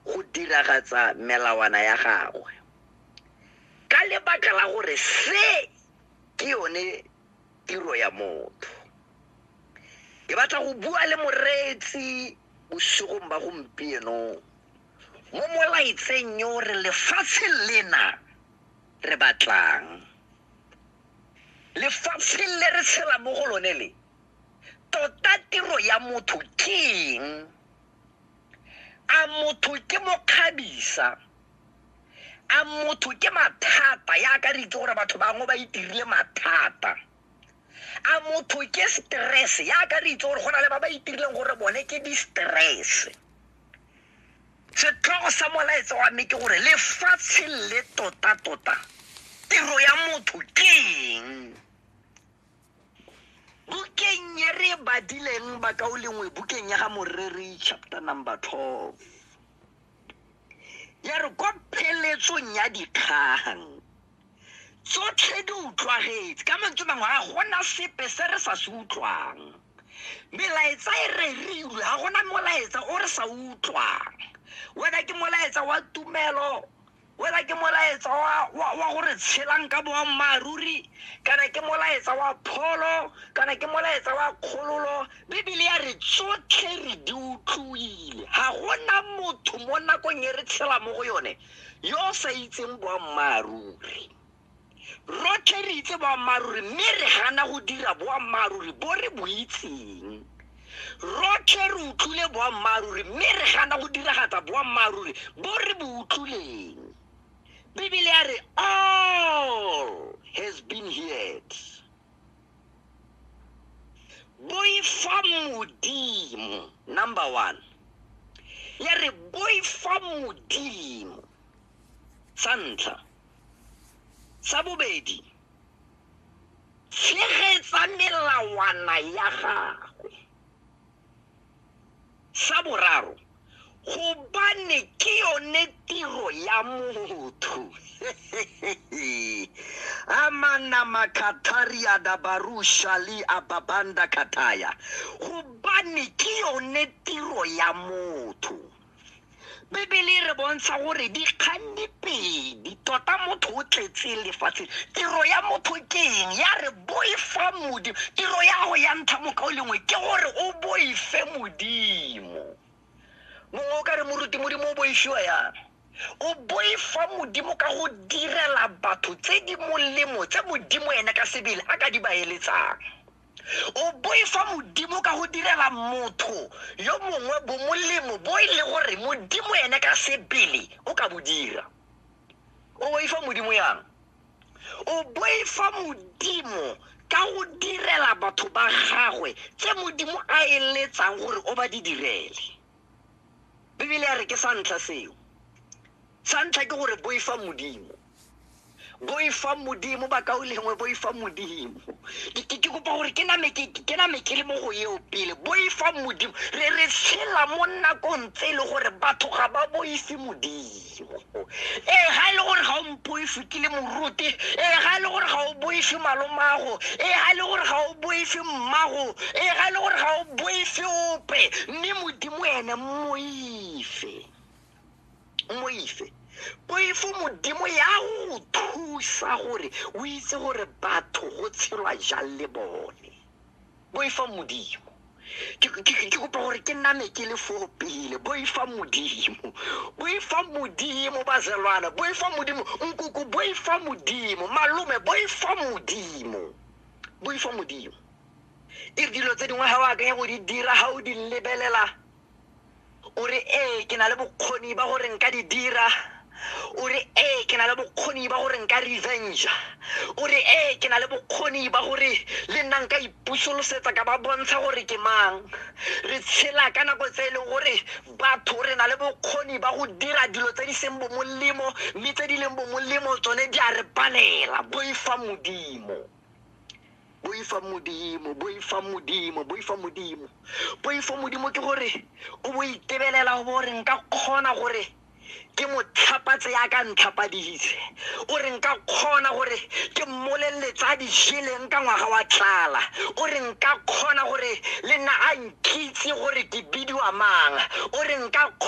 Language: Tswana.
go diragatsa melawana ya gagwe ka lebaka la gore se ke yone tiro ya motho ke batla go bua le moreetsi bosigong ba gompieno mo molaetseng yo re lefatshe lena re batlang lefatshe le re tshela mo go lone le tota tiro ya motho ke eng a motho ke mokgabisa a motho ke mathata yaka re itse gore batho bangwe ba itirile mathata a motho ke stress yaka re itse gore go na le ba ba itirileng gore bone ke di-stress setlhogo sa molaetsa wa me ke gore lefatshe le tota-tota tiro ya motho ke eng bukeng e re badileng bakaolengwe bukeng ya ga moreri chapter number 12 ya re kwa pheletsong ya dikgang tsotlhe di utlwagetse ka mantswe mangwe ga gona sepe se re sa se utlwang melaetsa e rerilwe ga gona molaetsa o re sa utlwang wena ke molaetsa wa tumelo wela ke molaetsa wa, wa, wa gore tshelang ka boammaaruri kana ke molaetsa wa pholo kana ke molaetsa wa kgololo bibele ya re tsotlhe re di utlwile ga gona motho mo nakong e re tshela mo go yone yo o sa itseng boammaaruri rotlhe re itse boammaaruri mme re gana go dira boammaaruri bo re bo itseng rotlhe re utlwile boammaaruri mme re gana go diragatsa boammaaruri bo re bo utlwileng bibele ya re all has been heard boifa modimo number one ya re boifa modimo sa ntlha Sa bobedi, tshegetsa melawana ya gagwe. Sa boraro, gobane ke yone tiro ya motho amanamakathariadabarushali ababanda kataya gobane ke yone tiro ya motho bibele e re bontsha gore dikgang di pedi tota motho o tletse lefatshe tiro ya motho ke eng ya re boifa modimo tiro ya go ya ntlha moka o lengwe ke gore o boife modimo mongwe o ka re moruti modimo o boifiwa yang o boifa modimo ka go direla batho tse di molemo tse modimo ene ka sebele a ka di baeletsang o boifa modimo ka go direla motho yo mongwe bomolemo bo e le gore modimo ene ka sebele o ka bo dira o boifa modimo yang o boifa modimo ka go direla batho ba gagwe tse modimo a eletsang gore o ba di direle bibele ya re ke sa ntlha seo sa ntlha ke gore boifa modimo boifang modimo ba ka o lengwe boifang modimo Ke- ke ke kopa gore ke name ke ke name ke le mo go eo pele boifang modimo re re tshela mo nakong tse e le gore batho ga ba boife modimo ee ga e le gore ga o mpoife ke le moruti ee ga e le gore ga o boife malomago ee ga e le gore ga o boife mmago ee ga e le gore ga o boife ope mme modimo ene mmoife moise poifo modimo ya go thusa gore o itse gore batho go tshelwa jang le bone boifa modimo ke ke- ke- ke kopa gore ke name ke le foo pele boifa modimo boifa modimo bazelwana boifa modimo nkoko boifa modimo malome boifa modimo boifa modimo e re dilo tse dingwe ga o akanya go di dira ga o di lebelela o re ee ke na le bokgoni ba gore nka di dira o re ee ke na le bokgoni ba gore nka revenge o re ee ke na le bokgoni ba gore le nna nka ipusolosetsa ka ba bontsha gore ke mang re tshela ka nako tse e leng gore batho re na le bokgoni ba go dira dilo tse di seng bo molemo mme tse di leng bo molemo tsone di a re palela boifa modimo boifa modimo boifa modimo boifa modimo boifa modimo ke gore o bo itebelela o bo re nka kgona gore ke mo tlhapatse ya ka ntlhapaditse o re nka kgona gore ke mmoleletse a dijeleng ka ngwaga wa tlala o re nka kgona gore le nna a nkitse gore ke bidiwa mang o re nka kgona